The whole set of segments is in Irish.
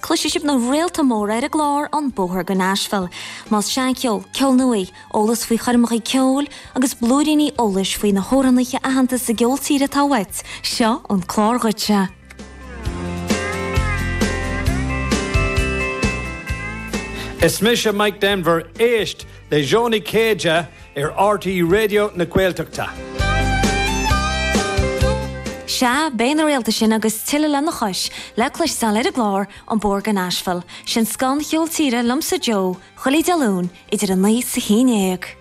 Cloisfidh sibh na réalta móra ar an gclár An Bóthar go Nashville, más seancheol, ceol nua, eolas faoi choirmeacha ceoil agus blúiríní eolais faoi na hamhránaithe aitheanta sa gceol tíre atá uait, seo an clár dhuitse! Is mise Mike Denver, éist! le Joe Ó Céide ar rte Raidio na Gaeltachta. Sea, beidh na réalta sin agus tuilleadh lena chois le cloisteáil ar an gclár An Bóthar go Nashville, sin scoth an cheoil tíre liomsa Joe, chuile Dé Luain idir a 9 's a 11.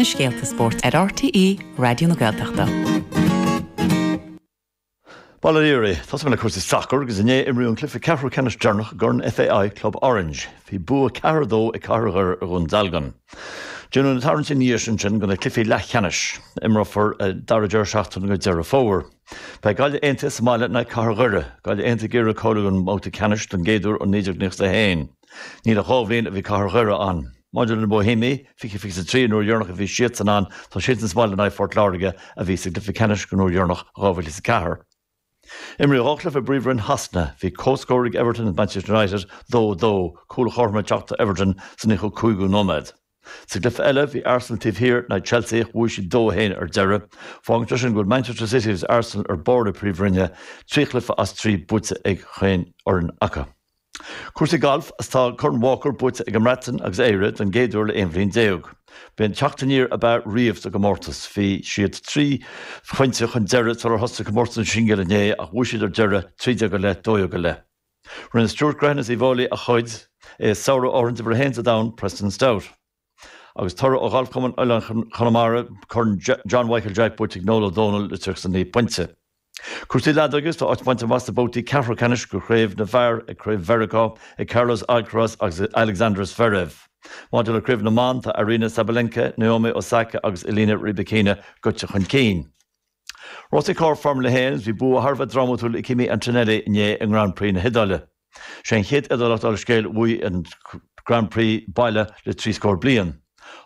na scéalta spóirt ar RTÉ Raidió na Gaeltachta. Baile an Iaraidh, Tosóidh mé le cúrsaí sacair agus inné imríodh an cluiche ceathrú ceannais deireanach i gCorn FAI Club Orange. Bhí bua 4-2 ag Cathair Dhoire ar Dhún Dealgan. Déanadh na tarraingtí ina dhiaidh sin ansin go na cluichí leathcheannais. Imreofar an dara deireadh seachtaine go Deireadh Fómhair. Beidh Gaillimh Aontaithe sa mbaile in aghaidh Cathair Dhoire. Gaillimh Aontaithe ag iarraidh a ghabháil ag an mbabhta ceannais don gcéad uair ó 1991. Níl ach dhá bhliain ó bhí cathair Dhoire ann. Maidir le na Boihéimigh, 2023, an uair dheireanach a bhí siadsan ann, tá siadsan sa mbaile in aghaidh Phort Láirge, a bhí sa gcluiche ceannais an uair dheireanach, 2004. Imríodh dhá chluiche i bPríomhroinn Shasana. Bhí comhscór ag Everton agus Manchester United, 2, 2, cúl an chothroim ag teacht do Everton sa nóchadú cúigiú nóiméad. Sa gcluiche eile, bhí Arsenal taobh thiar in aghaidh Chelsea ach bhuaigh siad 2, 1 ar deireadh. Fágann sé sin go bhfuil Manchester City agus Arsenal ar bharr na Príomhroinne, trí chluiche as trí buaite ag chaon fhoireann acu. Cúrsaí Gailf Tá Corn Walker buaite ag an mBreatain agus Éire don gcéad uair le 11 bhliain. B'é an teacht aniar ab fhearr riamh sa gcomórtas. Bhí siad trí phointe chun deiridh sular thosaigh comórtas na singil inné ach bhuaigh siad ar deireadh, 13 go leith, 12 go leith. Rinne Stuart Grehan as Uíbh Fháilí a chuid i sárú an imreora uimhir a haon sa domhan, Preston Stout. Agus toradh ó Ghalf Chumann Oileáin Chonamara, Corn John Mhichael Jack buaite ag Noel Ó Dónaill, le 39 pointe. Cúrsaí leadóige, Tá áit bainte amach sna babhtaí ceathrú ceannais go Craobh na bhFear ag Craobh Mheiriceá ag Carlos Alcaraz agus Alexander Zverev. Maidir le Craobh na mBan, tá Aryna Sabalenka, Naomi Osaka agus Elina Rybakina goite chun cinn. Rásaí carr Formula 1, Bhí bua thar a bheith drámatúil ag Kimi Antonelli inné i nGrand Prix na hIodáile. 'Sé an chéad Iodálach dár scéal a bhuaigh an Grand Prix baile le trí scór bliain.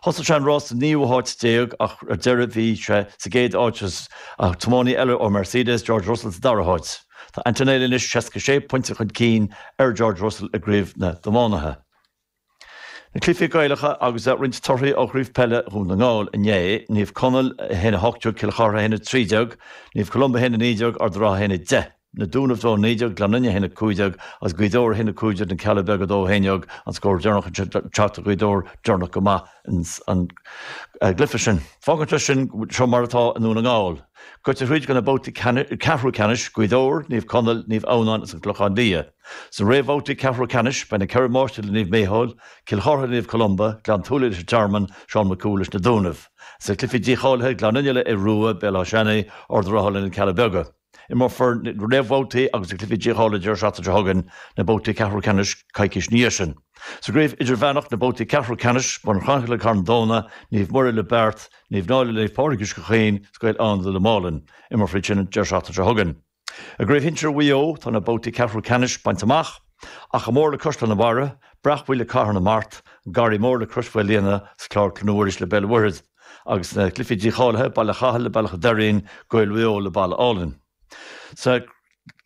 Thosaigh sé an rás sa naoú háit déag ach ar deireadh bhí sé sa gcéad áit agus an tiománaí eile ó Mercedes, George Russell, sa dara háit. Tá Antonelli anois seasca sé pointe chun cinn ar George Russell i gcraobh na dtiománaithe. Na cluichí Gaelacha agus roinnt torthaí ó Chraobh Peile Dhún na nGall inné, Naomh Conaill 1-18 Cill Chartha 1-13 Naomh Columba 1-19 Ard an Rátha 1-10 Na Dúnaibh 2-19 Gleann Fhinne 1-15 agus Gaoth Dobhair 1-15 Na Cealla Beaga 2-11 an scór deireanach anseo ag teacht do Ghaoth Dobhair deireanach go maith ins an gcluiche sin. Fágann sé sin go bhfuil seo mar atá i nDún na nGall. Gaite thríd go na babhtaí ceathrú ceannais, Gaoth Dobhair, Naomh Conaill, Naomh Adhamhnáin agus An Clochán Liath. Sna réamhbhabhtaí ceathrú ceannais, beidh na Ceithre Máistrí le Naomh Micheál, Cill Chartha le Naomh Columba, Gleann tSúilí leis an Tearmann, Seán Mac Cumhaill leis na Dúnaibh. Sna cluichí dícháilithe, Gleann Fhinne le Aodh Ruadh, Béal Átha Seanaidh, Ard an Rátha le Na Cealla Beaga. Imreofar na réamhbhabhtaí agus na cluichí dícháilithe deireadh seachtaine seo chugainn, na babhtaí ceathrú ceannais coicís ina dhiaidh sin. Sa gcraobh idirmheánach, na babhtaí ceathrú ceannais, Bun Cranncha le Carn Domhnach, Naomh Muire le Beart, Naomh Náille le Naomh Pádraig Uisce Chaoin, is Gaeil Fhánada le Málainn. Imreofar iad sin an deireadh seachtaine seo chugainn. I gCraobh Shinsir Mhaigh Eo, tá na babhtaí ceathrú ceannais bainte amach, Achadh Mór le Caisleán an Bharraigh, Bréachmhaigh le Cathair na Mart, Garraí Mór le Crois Mhaoilíona, is Clár Chlainne Mhuiris le Béal an Mhuirthead, agus sna cluichí dícháilithe, Baile Chathail le Bealach an Doirín, Gaeil Mhaigh Eo le Balla Álainn. Sna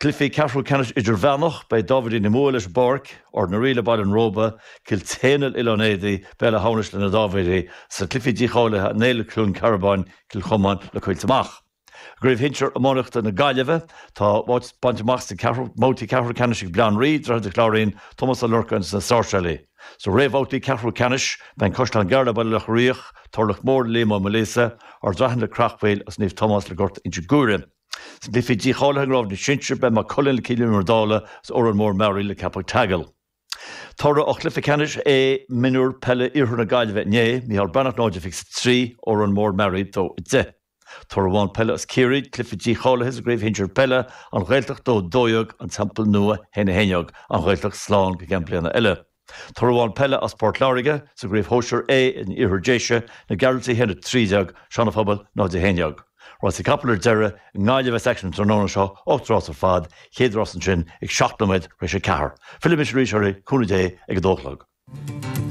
cluichí ceathrú ceannais idirmheánach, beidh Dáibhéidigh na Muaidhe leis an bPáirc, Ard na Rí le Baile an Róba, Cill tSéadhna le Oileán Éadaí, Béal Átha hAmhnais le Na Dáibhéidigh, sna cluichí dícháilithe, An Éill le Cluain Cearbáin, Cill Chomáin le Coillte Mach. I gCraobh Shinsir iománaíochta na Gaillimhe, tá áit bainte amach sna babhtaí ceathrú ceannais ag Baile Átha an Rí, Droichead an Chláirín, Tomás Ó Lorcáin agus na Sáirséalaigh. Sna réamhbhabhtaí ceathrú ceannais, beidh An Caisleán Gearr le Baile Locha Riach, Turlach Mór le Liam Ó Maoilíosa, Ard Raithin le Creachmhaoil agus Naomh Tomás le Gort Inse Guaire. Sna cluichí dícháilithe i gCraobh na sinsear, beidh Maigh Cuilinn le Cill Íomair Dálaigh agus Órán Mór-Meáraí le Ceapach an tSeagail. Toradh ó chluiche ceannais A Mionúir Peile Iarthar na Gaillimhe inné, Micheál Breathnach 0-23, Órán Mór-Meáraí 2-10. Toradh amháin peile as Ciarraí, cluiche dícháilithe sa gCraobh Shinsir Peile, An Ghaeltacht 2 12 An Teampall Nua 1 11 An Ghaeltacht slán go gceann bliana eile. Toradh amháin peile as Port Láirge, sa gCraobh Shóisir A in Iarthar Déise, Na Gearaltaigh 1 13 Sean Phobal 0 11. Rásaí capall ar deireadh i nGaillimh a bheas aicsean an tráthnóna seo, ocht rás ar fad, chéad rás ansin ag seacht nóiméad tar éis a ceathair. Fillfidh mise arís oraibh, cúnamh Dé, ag a dó a chlog.